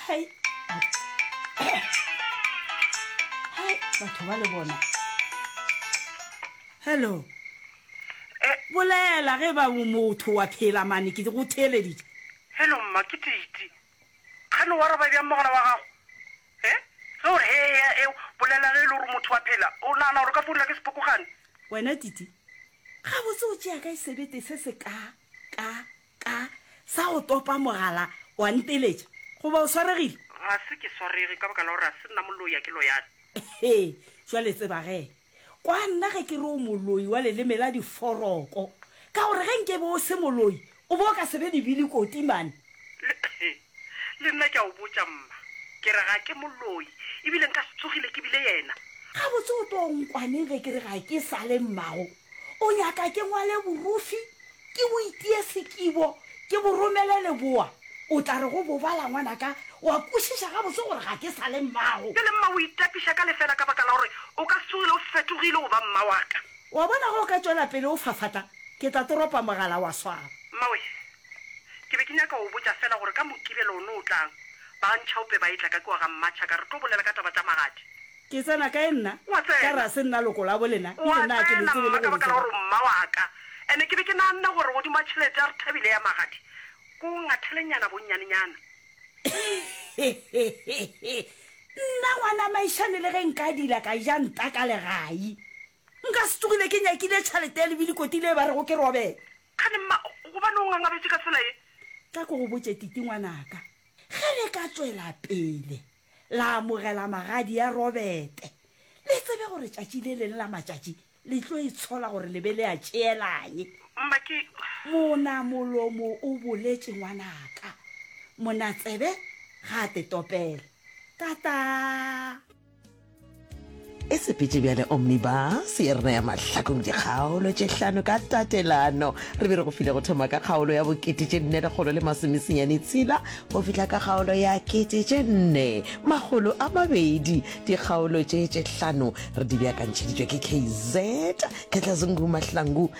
hai hai batho ba le bona hello bolela ge ba motho wa phela mane ke go theeleditše hello mma ke titi gane wa raba bjang mogala wa gago e ge ore he ya eo bolela ge e le gore motho wa phela o nagana gore ka founela ke sepokogane wena titi ga botse o tšea ka e sebete se se ka ka Ka, sa go topa mogala, wa nteletša. Goba o swaregile? Ga se ke swarege, ka baka la gore ga se nna moloi, ga ke loyane. He, bjale tseba ge. Kwa nna ge ke re o moloi wa leleme la diforoko. Ka gore ge nke be o se moloi, o be o ka se be lebili koti, mane. Le, Le nna ke a o botša, mma, ke re ga ke moloi, e bile nka se tsogile ke bile yena. Gabotse o tlo nkwaneng ge ke re ga ke sa le mmago? O nyaka ke ngwale borufi, ke bo itie sekibo, ke bo romele leboa? O tla re go bobala, ngwanaka, o a kwešiša gabotse gore ga ke sa le mmago. Bjale, mma, o itapiša ka lefeela ka baka la gore o ka se tsogile o fetogile go ba mma wa ka. O a bona, ge o ka tšwela pele o fafata, ke tla toropa mogala wa swaba. Mmawe, Ke be ke nyaka go botša fela gore ka Mokibelo o no o tlang, ba ntšhaope ba etla ka kua ga mmatšha ka re tlo bolela ka taba tša magadi. Ke tsena kae nna? Wa Ka tsena. rase nna loko labo lena, e Wa le naa ke le tsena tsebe le mma ka gore baka la gore sera. o mma wa ka. Ene ke be ke naganne gore godimo a tšhelete ya re thabile ya magadi, ko o ngathelenyana bonnyanenyana. Nna ngwana Maišane le ge nka dila ka ja nta ka legai, nka se tsogile ke nyakile tšhelete ya lebilikoti le ba rego ke robela. Kgane mma, gobane o ngangabetše ka tsela ye? Ka ke go botše Titi ngwanaka, ge le ka tšwela pele la amogela magadi ya Robete, le tsebe gore tšatši le leng la matšatši le tlo itshola gore le be le a tšeela'ng. Mma, ke. Monamolomo o boletše ngwanaka, monatsebe ga a te topele. Kataa! e sepetše bjale omnibus ye rena ya mahlakong dikgaolo tše hlano ka tatelano re be re go file go thoma ka kgaolo ya bokete tše nne lekgolo le masomesenyane tshela go fihla ka kgaolo ya kete tše nne magolo a mabedi dikgaolo tše tše hlano re di beakantšheditšwe ke kz ketlazungu mahlangu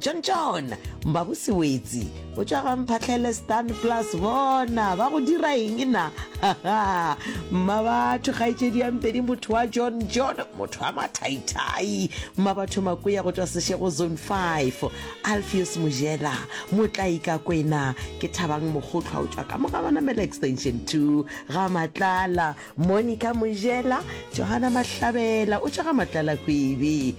John John mmago sewetsi o tšwa ga mphatlhele stan plus bona ba go dira eng na mma batho kgaetšedi ya mpedi motho wa john john motho wa mathaithai mma batho makoya go tšwa sešego zone 5 alfios mojela motlai ka kwena ke thabang mokgotlhwa o tšwa ka moga banamela extension 2 ga matlala monica mojela johana mahlabela o tšwa ga matlala kwebi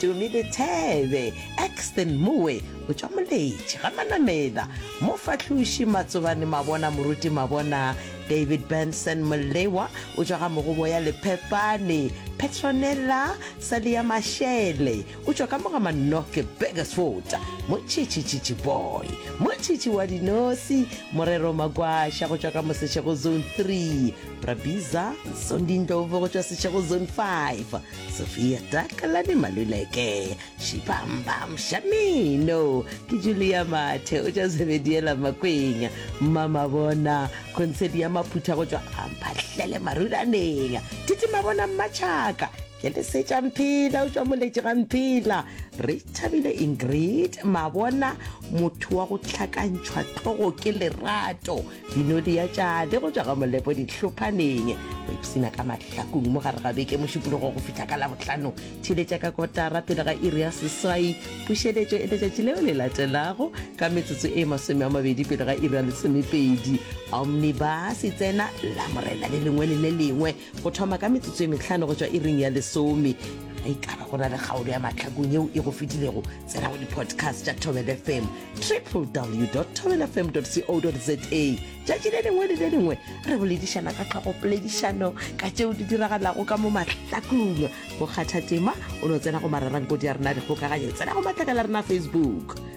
Tumi Lethebe, Axton Moe, Botšwamoletši, ga Manamela, Mofahloši Matsobane Mabona, Moruti Mabona, David Benson Molewa, o tšwa ga Mogoboya Lephepane, Petronella Salia Mashele, o tšwa ka mo ga Manoke Burgersfort, Motšhitšhi Tšhitšhi Boy, Motšhitšhi wa Dinosi, Morero Magwasha go tšwa ka mo Seshego Zone 3, Brabiza Zondi Ndlovu go tšwa Seshego Zone 5, sofia takalane maluleke šibambam shamino ke julia mathe o tša sebediela makweng mama bona konsedi ya maphutha go tšwa amphahlele marulaneng titi mabona mmatšhaka ke le setša mphela o tšwa moletše ga mphela re thabile ingrid mabona motho wa go tlhakantšhwa tlhogo ke lerato dinodi ya tšade go tšwa ga molepo ditlhophaneng go ipsina ka mahlakong mo gare ga beke mošupologo go fihla ka labotlhano theletša ka kotara pele ga iri ya seswai pušeletšo e letšatši leo le latelago ka metsotso e masome a mabedi pele ga iri ya lesomepedi omnibus e tsena la morena le lengwe le le lengwe go thoma ka metsotso e metlhano go tswa iring ya lesome ge e kaba go na le kgaolo ya matlhakong yeo e go fetilego tsena go di-podcast tša tobel fm triple w tobel fm co za tšatši le lengwe le le lengwe re boledišana ka tlhogopoledišano ka tšeo di diragalago ka mo mahlakong go kgatha tema o no tsena go mararankodi ya rena dikgokaganyo tsena go matlakala rena facebook